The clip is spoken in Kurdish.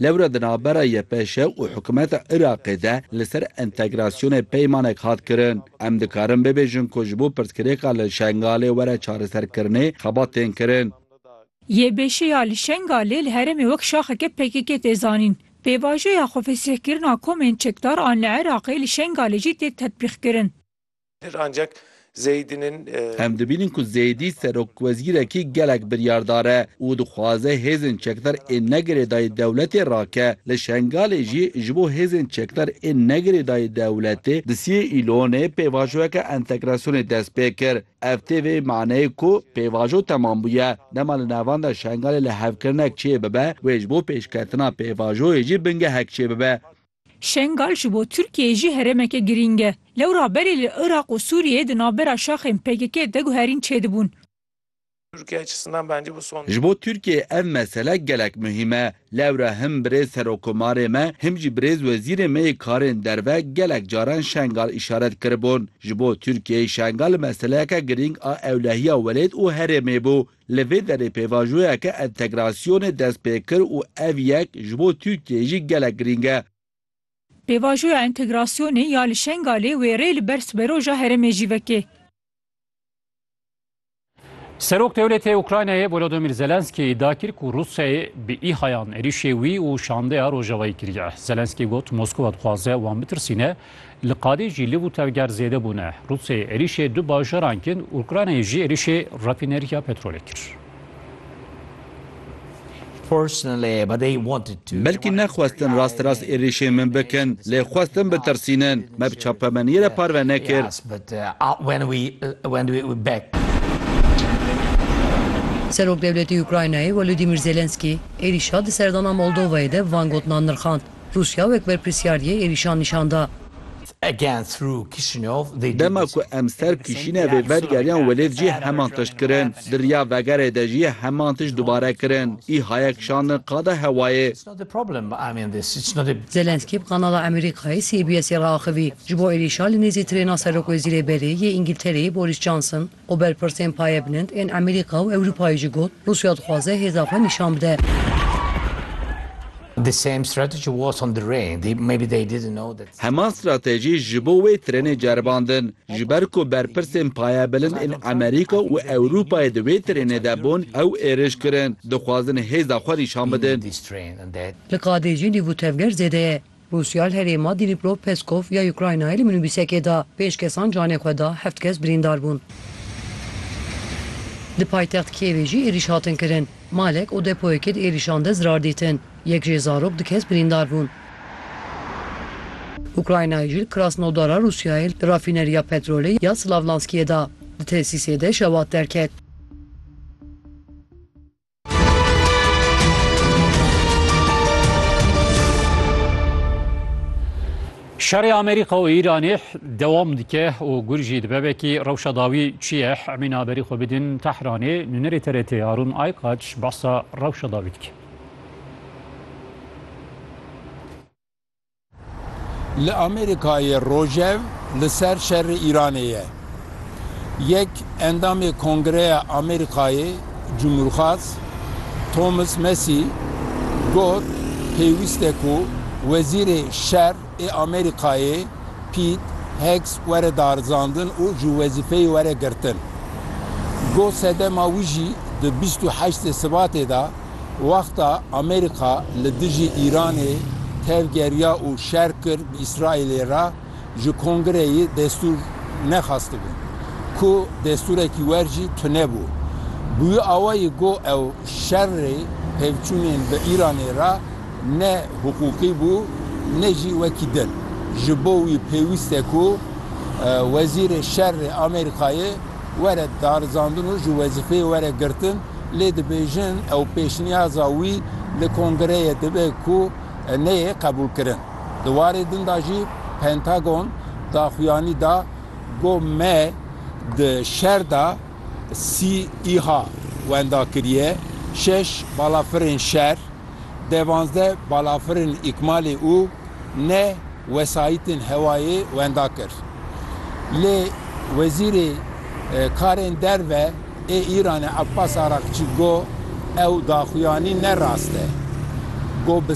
Lewra di navbera YPŞ û hikûmeta Iraqê de li ser entegrasyonê peymanek hat kirin. Em dikarin bibêjin ku ji bo pirsgirêka li Şengalê were çareserkirinê xebat tên kirin. YPŞ ya li Şengalê li herêmê wek şaxeke pkk tê zanîn. Pêvajoya xwefesihkirina komên çekdar an li Iraqê li Şengalê jî tê tetbîqkirin. Pir ancak Zeydî'nin. Em dibînin ku Zeydî serokwezîrekî gelek biryardar e û dixwaze hêzên çekdar ê negirêdayî dewletê rake. Li Şengalê jî ji bo hêzên çekdar ê negirêdayî dewletê di siyê Îlonê pêvajoyeke entegrasyonê dest pê kir. Ev tê vê maneyê ku pêvajo temam bûye. Dema li navenda Şengalê lihevkirinek çêbibe wê ji bo pêşketina pêvajoyê jî bingehek çêbibe. Şengal ji bo Tirkiyeyê jî herêmeke girîng e. Lewra berê li Iraq û Sûriyeyê di navbera şaxên PKK'ê de guherîn çêdibûn. Ji bo Tirkiyeyê ev mesele gelek muhîm e. Lewra him birêz Serokomarê me, him jî birêz Wezîrê me yê Karên Derve gelek caran Şengal îşaret kiribûn. Ji bo Tirkiyeyê Şengal meseleyeke girîng a ewlehiya welêt û herêmê bû. Li vê derê pêvajoyeke entegrasyonê dest pê kir û ev yek ji bo Tirkiyeyê jî gelek girîng e. Pêvajoya entegrasyonê ya li Şengalê wêrê li ber siberoja herêmê jî vekê. Serok dewletê Ukraynayê Volodymyr Zelensky îdia kir ku Rûsyayê bi îhayan êrîşê wî û şandeya Rojavayî kiriye. Zelensky got Moskova dixwaze wan bitirsîne Li qadê jî liv û tevger zêde bûne. Rûsyayê êrîşê du bajaran kin, Ukraynayê jî êrîşê rafîneriya petrolê kir. Belkî nexwestin rast rast êrîşê min bikin, lê xwestin bitirsînin. Me bi çapemeniyê re parve nekir. Serokdewletê Ukraynayê Wolodîmîr Zelenskî êrîşa di serdana Moldovayê de van gotinan nirxand, Rûsya wek berpirsyar yê êrîşan nîşan da. Dema ku em ser Kişînevê vedigeryan welêt jî heman tişt kirin. Di riya vegerê de jî heman tişt dubare kirin. Îha ye kişandin qada hewayê. Zelensky bi kanala Emerîkayê CBS'ê re axivî. Ji bo êrîşa li nêzî tirêna serokwezîrê berê yê Îngiltereyê Boris Johnson, Ku berpirsên paye bilind ên Amerîka û Ewropayê jî got, Rûsya dixwaze hêza xwe nîşan bide. Hema stratejî ji bo wê tirênê ceribandin. Ji ber ku berpirsên paye bilind ên Amerîka û Ewropayê di wê tirênê de bûn, ew êriş kirin. Dixwazin hêza xwe nîşan bidin. Li Kadê jî nîv û tevger zêde ye. Rûsya li herêma Dîniprov Peskov ya Ukraynayê li minûbîsekê da. Pênc kesan canê xwe da, heft kes birîndar bûn. Di paytext Kîevê jî êrîş hatin kirin. Malek û depoyekê di êrîşan de zirar dîtin. Yek jê zarok du kes birîndar bûn. Ukraynayê jî li Krasnodara Rûsyayê li rafîneriya petrolê ya Slavlanskiyê da di tesîsê de şewat derket. Şerê Amerîka û Îranê dewam dike û gur jî dibe vekî rewşa dawî çi ye emîn haberî xwe bidin Tehranê nûnerê TRT Harûn Aykaç behsa rewşa dawî dike. Li Amerîkayê rojev li ser şerê Îranê ye. Yek endamê Kongreya Amerîkayê Cumhurxwaz Thomas Massie got pêwîst e ku Wezîrê Şer ê Amerîkayê Pete Hegs were darizandin û ji wezîfeyê were girtin. Got sedema wî jî di bîst û heştê Sibatê de Wexta Amerîka li dijî Îranê tevgeriya û şer kir bi Îsraîlê re ji Kongreyê destûr nexwestibû ku destûrekî wer jî tune bû. Bi wî awayî got ew şerê pevçûnên bi Îranê re ne hiqûqî bû ne jî wekî din. Ji bo wî pêwîst e ku wezîrê şerê Amerîkayê were darizandin û ji wezîfeyê were girtin. Lê dibêjin ew pêşniyaza wî li kongreyê dibe ku neyê qebûlkirin. Di warê din de jî Pentagon daxuyanî da ku me di şer de sî îha wenda kiriye, şeş balafirên şer, devanzdeh balafirên îkmalê û neh wesayîtên hewayê wenda kir. Lê wezîrê karên derve, Ê Îranê Abbas Araqçî got, Ew daxuyanî ne rast e. Got bi.